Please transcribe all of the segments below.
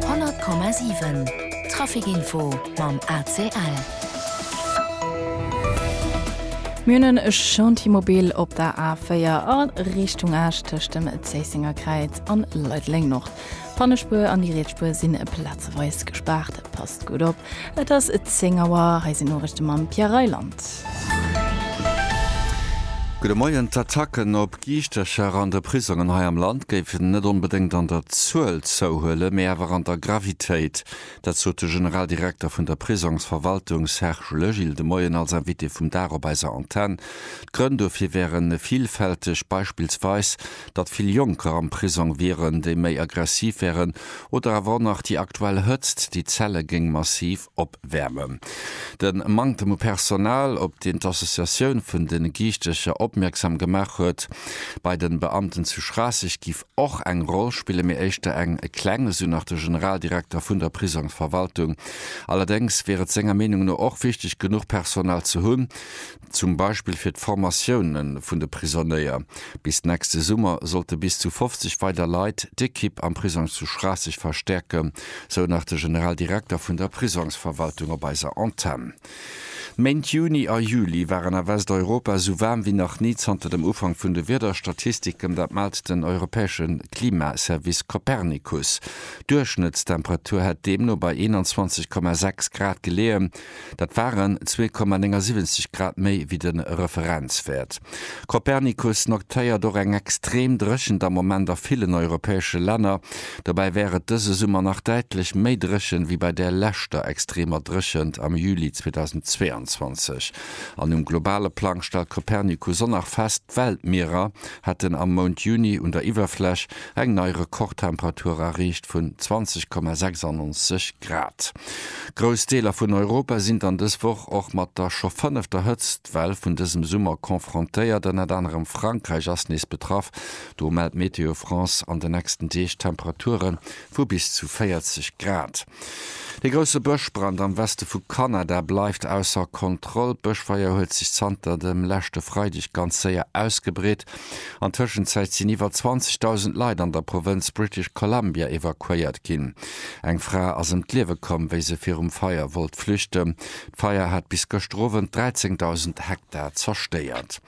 100,7 Traficinfo mam ACL. Mir hunn en Chantier mobil op der A4 a Richtung Esch tëscht dem Zéissenger Kräiz an Leideleng-Nord. D'Pannespuer an déi riets Spuer sinn plazeweis gespaart. Passt gutt op, et ass 10 Auer. Hei sinn d'Noriichte mam Pierre Reyland. Gudde Moien, D'Attacken op D'Giischtercher an de Prisongen hei am Land géifen net onbedéngt an der Zuel zouhuelen, mee awer an der Gravitéit. Dat sot de Generaldirekter vun der Prisongsverwaltung Serge Legil de Moien als Invité vum Dag op eiser Antenn. D'Grënn dofir wäre villfälteg, beispillsweis, datt vill Jonker am Prisong wieren, déi méi aggressiv wären, oder awer och nach déi aktuell Hëtzt, déi d'Zelle géing massiv. opwäermen. De Manktem u Personal, op deen d'Associatioun vun de Giichtecher opmierksam gemaach huet, bei de Beamten zu Schraasseg giff och eng Roll spillen, mee éischter eng kleng, esou nach de Generaldirekter vun der Prisongsverwaltung. Allerdéngs wier et senger Meenung no och wichteg, genuch Personal ze hunn, zum Beispill fir d'Formatioune vun de Prisonnéier. Bis nächste Summer sollte bis zu 50 weider Leit d'Ekipp am Prisong zu Schraasseg verstäerken, sou nach de Generaldirekter vun der Prisongsverwaltung op eiser Antenn. D'Méint Juni a Juli waren a Westeuropa esou waarm wéi nach ni zanter dem Ufank vun de Wiederstatistiken, dat mellt den europäesche Klimaservice Copernicus. D'Duerchschnëttstemperatur hätt deemno bei 21,6 Grad geleeën. Dat waren 2,79 Grad méi wéi de Referenzwäert. Copernicus notéiert och eng extrem Dréchent am Moment a villen europäesche Länner. Dobäi wär et dëse Summer nach däitlech méi dréchen, wéi bei där leschter extremer Dréchent am Juli 2022. An um globale Plang stellt Copernicus och nach fest, d'Weltmierer hätten am Mount Juni un der Iwwerfläch eng nei Rekordtemperatur erreecht vun 20,96 Grad. Grouss Deeler vun Europa sinn dann dës Woch och mat der scho fënnefter Hëtztwell vun dësem Summer confrontéiert. Ënnert anerem Frankräich ass nees betraff. Do mellt Météo France an de nächsten Deeg Temperature vu bis zu 40 Grad. De grousse Bëschbrand am Weste vu Kanada bleift ausser Kontroll. D'Bëschfeier huet sech zanter dem leschte Freideg ganz séier ausgebreet. An Tëschenzäit sinn iwwer 20.000 Leit an der Provënz British Columbia evakuéiert ginn. Eng Fra ass ëm d'Liewe komm, wéi se virum Feier wollt flüchten. D'Feier hat bis gëschter Owend 13.000 Hektar zerstéiert.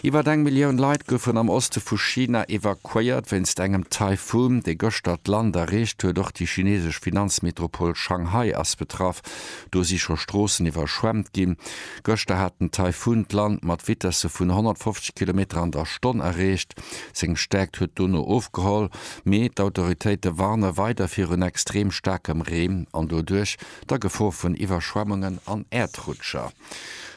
Iwwer eng Millioun Leit goufen am Oste vu China evakuéiert. Wéinst engem Taifun, dee gëschter d'Land erreecht huet, och déi chinesesch Finanzmetropol Shanghai ass betraff. Do si scho Stroossen iwwerschwemmt ginn. Gëschter hat den Taifun d'Land mat Vitesse vun 150 Kilometer an der Stonn erreecht. Seng Stäerkt huet dono ofgeholl, mee d'Autoritéite warne weider virun extrem staarkem Reen an doduerch der Gefor vun Iwwerschwemmungen an Äerdrutscher.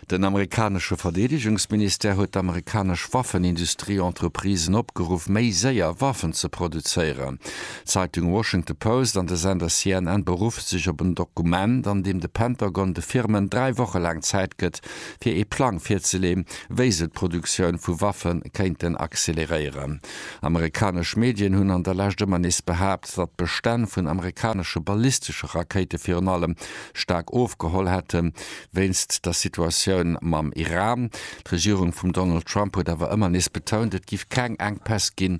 Den amerikanesche Verdeedegungsministère huet d'amerikanesch Waffenindustrie-Entreprisen opgeruff, méi séier Waffen ze produzéieren. D'Zeitung Washington Post an de Sender CNN beruffe sech op en Dokument, an deem de Pentagon de Firmen dräi Woche laang Zäit gëtt, fir ee Plang virzeleeën, wéi se d'Produktioun vu Waffe kéinten acceleréieren. Amerikanesch Medien hunn an der Lescht ëmmer nees behaapt, datt d'Bestänn vun amerikanesche ballistesche Rakéite virun allem staark ofgeholl hätten, wéinst der Situatioun mam Iran. D'Regierung vum Donald Trump huet awer ëmmer nees betount, et giff keng Enkpäss ginn,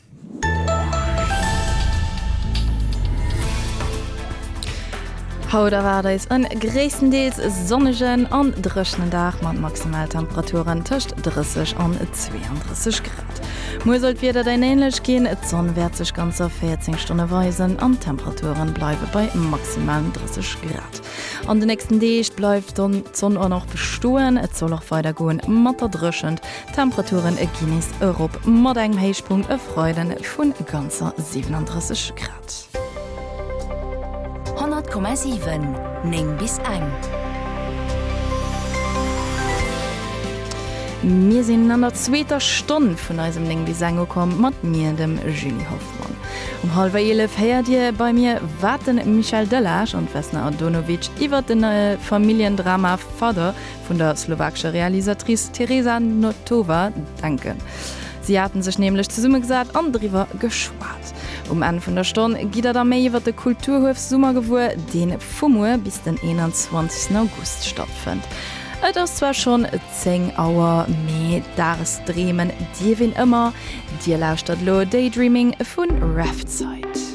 Haut erwaart eis en gréisstendeels sonnegen an dréchenen Dag mat Maximaltemperaturen tëscht 30 an 32 Grad. Muer soll d'Wieder dann änlech ginn, d'Sonn wäert sech ganzer 14 Stonne weisen an d'Temperature bleiwe bei maximalen 30 Grad. An de nächsten Deeg bleift dann d'Sonn och nach bestoen, et soll och weider goe mat der Dréchent. D'Temperaturen e ginn nees erop, mat engem Héichpunkt e Freide vun ganzer 37 Grad. 100,7, 9 bis eng. Mir sinn an der zweeter Stonn vun eisem 9 bis eng ukomm, mat mir, dem Julie Hoffmann. Um hallwer eelef héiert Dir bei mir, wat de Michel Delage an d'Vesna Andonovic iwwert de neie Familljendrama Father vun der slowakescher Realisatrice Tereza Notova denken. Si haten sech nämlech zesummegesat an driwwer geschwat. Um Enn vun der Stonn gitt der da méi iwwer de Kulturhuef Summer gewuer, deen vu muer bis den 21 August stattfënnt. Et ass zwar schonn 10 Auer, mee Dages dreemen dierf een ëmmer. Dir lauschtert elo Daydreaming vu Rhapsite.